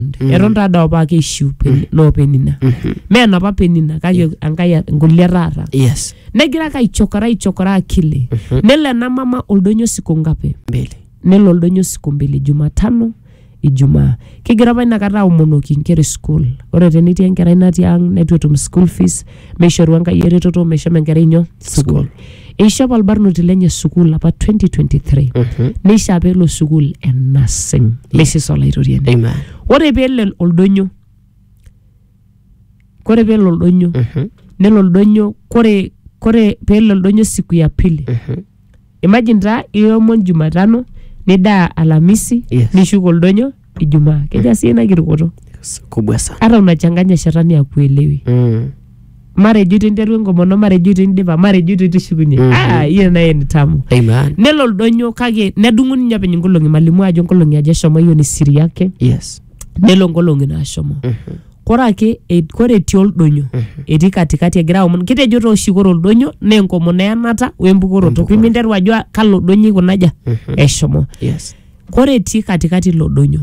around Mm. eton taa doo apa keishiu Peni- loo penina Mhm. mee enapa penina kake enkai e- nkulie taata yes negira ake aichokora aichokora akili Mhm. nelo ena mama oldonyo siku ngapi mbili nelo oldonyo siku mbili jumatano ijumaa kigira apa inakata aomonoki inkera e school ore tenetii enkerai natii ang neitu etum school fees meishoru Enkai eretoto meshomo enkerai inyo sukuul. Eishop olbarnoti lenye sukuul apa 2023 Mhm. neishaa peelo sukuul e nursing lesis olaitoriani. Amen. Ore peelo oldonyo, kore peelo oldonyo, Mhm. nelo oldonyo, kore kore peelo oldonyo siku ya pili Mhm. imagine taa iomon jumatano nidaa alamisi Yes. nishuko oldonyo ijumaa keja sii ina kirukoto S- kubwa sana hata unachanganya shetani akuelewi mm. marejo itu interu enkomono marejo itu indipa marejo itu itishukunye Mhm. ah hiyo naye ni tamu amen nelo oldonyo kake nedung'u ninye openy nkolong'i malimu ajo nkolong'i aja eshomo hiyo ni siri yake yes nelo nkolong'i naashomo Mhm. kore ake e- kore etii oldonyo etii katikati egira aomon kitejo taa oshi kore oldonyo naa enkomono eyanata wembukoroto piminteru ajo "Ah, kalo donyo ikuna aja eshomo yes kore etii katikati ilo donyo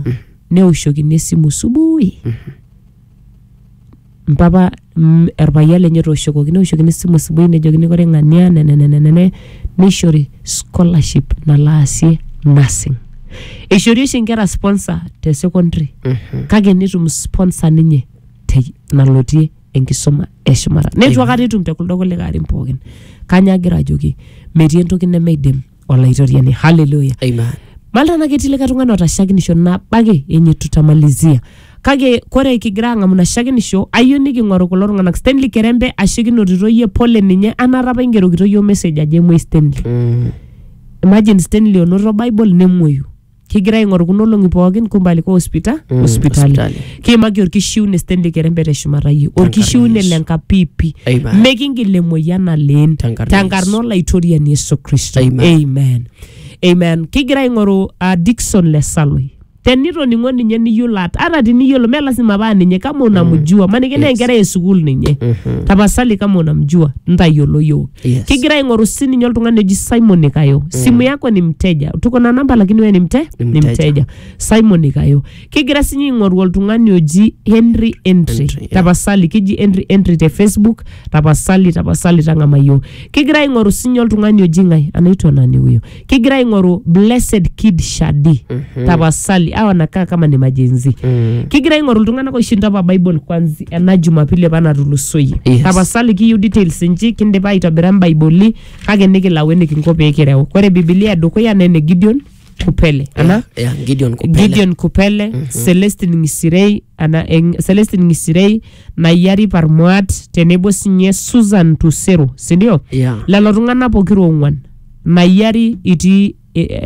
neoshokini esimu subui mpapa mm, orpayian lenye otooshokoki neoshokini esimu subui nejokini kore ng'ania nenenenene neishori scholarship nalo aasie nursing eishori oshi inkera sponsor te secondary kake netum sponsor ninye te nalotie enkisuma eshumata neitu akata etum te kuldo kulikae arin pookin kanya agira ajoki metii entoki nemeidim olaitoriani haleluya Amen. malta naa ketii likae tung'ani otashakinisho nabo ake yenye tutamalizia Kake kore kigira aang'amu ina shakenisho, ayieu niking'oru kulo tung'anak. Stanley Kerembe, ashe kinotito iyie pole ninye anaata apa ingerokito iyiook message ajo emuoi Stanley. Imagine Stanley onoto Bible nemuoyu. Kigira aing'oru kuna olong'i pookin kumbe alikuwa hospita, Mm, hospitali. hospitali. Kiimaki orkishiune Stanley Kerembe teshumata iyie. Orkishiune Yesu. le nkapipi. Amen. Mikingil emoyian aleen. Tenkarna Tenkarna Yesu. olaitoriani Yesu Kristo. Amen. Amen. Amen. Kigira aing'oru uh, Dickson le Saloi. tenitoning'o ninye niyiolo at- ata tiniyiolo me lasima paa ninye kama unamjua maniki naa enkerai esukuul ninye tapasali kama unamjua ntayiolo yiok Yes. kigira aing'oru sininye oltung'ani oji simon ikayo simu yako ni mteja tuko na namba lakini we ni mte Ni ni mteja. mteja simon ikayo kigira sinye aing'oru oltung'ani oji henry entry Entry, yeah. tapasali kiji entry entry te facebook tapasali tapasali tang'ama yiok kigira aing'oru sinye oltung'ani oji ng'ae anaitwa nani huyo kigira aing'oru blessed kid shadi tapasali awa nakaa kama ni majenzi Mm. kigira aing'oru iltung'anak oishinda apa bible kwanzi ena jumapili apa natulusoyie Yes. tapasali kiyieu details inji kindipa aitobira imbaiboli kake nikilau enikinko pee kireu ore bibilia edukuya naa ene gideon kupele ana Yeah, Gideon Kupele. gideon kupele celestin ngisirei ana eng- celestin ngisirei nayari parmuat tenebo sinye susan tusero sindio Yeah. lelo tung'anak pokira ong'uan Mayiari itii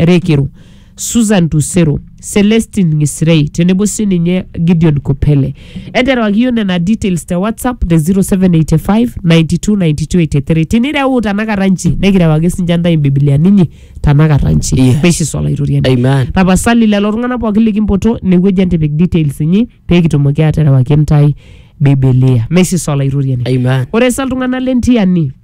Rekiru, Susan Tusero, Celestine Ngisirei tenebo sininye Gideon Kopele. Enterewaki yiok nena details te WhatsApp te 0785 92 92 83. Tinireu tanakata nchi nikirewaki sinche ntae imbibiliani inyi tanakata nchi. Yes. Precious Olaitoriani. Amen. Tapasali lelo tung'anak pooki likimpoto inewueji entipik details inyi pee kitumoki aaterewaki ntae Bibilia. Meshiso Olaitoriani. Amen. Ore sa iltung'anak le Ntiani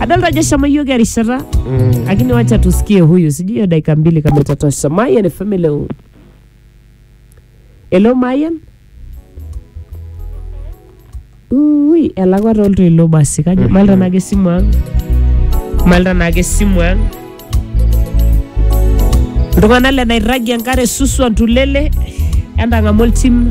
adolta ajo eshomo iyiook erishata lakini wacha tusikie huyu sijui hiyo dakika mbili kama itatosha mayan fm hello hello mayan ui elakwa toltoilo basi kajo malta naake esimu ang malta naake esimu ang iltung'anak le nairragi enkare suswa ntulele entang'amu oltim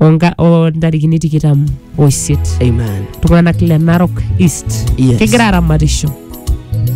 onka- o ntarikini tikitam oisiet Amen. iltung'anak le narok east Yes. kigira aramatisho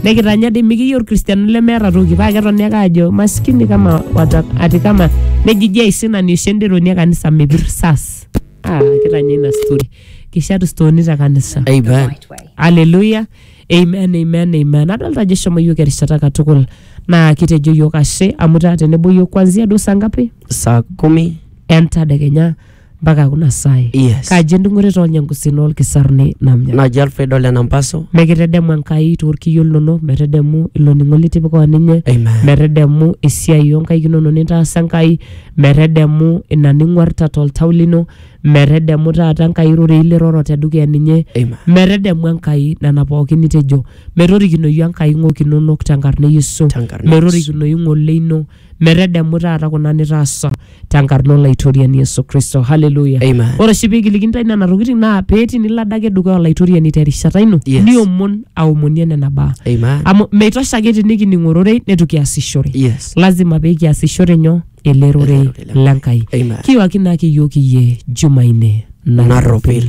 nikitanya dei mikiyieu irkristiano lemeeta toki paa ketoni ake ajo maskini kama wata, ati kama nejiji aisinani oshi enderoni e kanisa mepir sas ah, kitanya ina story kishatu stooni te kanisa Amen. Haleluya. Amen, amen, amen. Adolta ajo eshomo yiok erishata katukul naa kitejo yiok ashe amu taa tenebo yiok kwanzia duo saa ngapi saa kumi entadekenya mpaka kuna saai. Yes. Kaji endung'ore toonyangusin olkisaruni namnya. naji alfred ole nampaso Mekitedemu Enkai toorkiyo linono, metedemu ilo ning'o litipika o ninye, Amen. metedemu esiai oonkaik inono nintaasa Enkai, metedemu ina ning'uarta toltau lino, Metedemu taata Enkai irorei liroro te dukuya ninye. Amen. Metedemu Enkai nena pookin nitejo. Metorikinoyu Enkai ng'ok inonok tenkarna e Yesu. Tenkarna e Yesu. Metorikinoyu ng'ole ino. Metedemu taata kuna nitaasa tenkarna Olaitoriani Yesu Kristo. Hallelujah. Amen. Ore oshi piikiliki intae nena tokitin naa pee tinilo adake dukuya Olaitoriani terishata ino Yes. niomon aomonie nena baa. Amen. Amu meitosha ake tinikining ororei neitu kiasishore. Yes. Lazima pee kiasishore nyoo? ele rorei le Nkai. Amen. Kiwaki naake iyiook iyie Jumanne narropil.